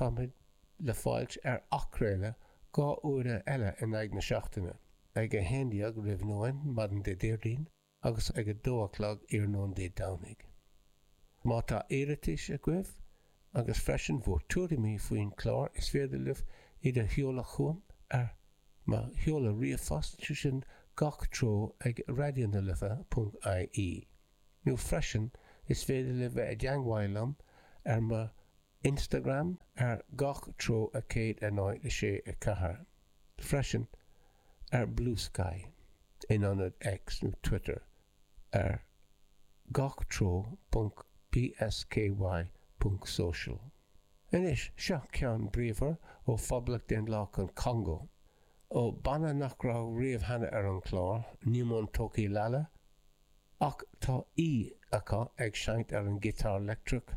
Táimid le fáilt ar athchraoladh dhá uaire eile in aghaidh na seachtaine, ag 11 roimh nóin maidin Dé Déardaoin agus ag 2 a chlog iarnóin Dé Domhnaigh. Má tá iarratais agaibh agus freisin bhur tuairimí faoin chlár is féidir libh iad a sheoladh chugam ar mo sheoladh ríomhphost, sé sin Gach treo ag radionalife.ie nó freisin is féidir libh bheith i dteangmháíl liom ar mo Instagram ar gach treo 106.4 freisin ar Bluesky in ionad X nó Twitter ar gach treo ponc bsky ponc social. Anois, seo ceann bríomhar ó Phoblacht Dhaonlathach an Chongó, ó banna nach raibh riamh cheana ar an chlár, Newman Toki Lala, ach tá aoi acu ag seinnt ar an giotár leictreach,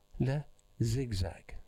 le zigzag.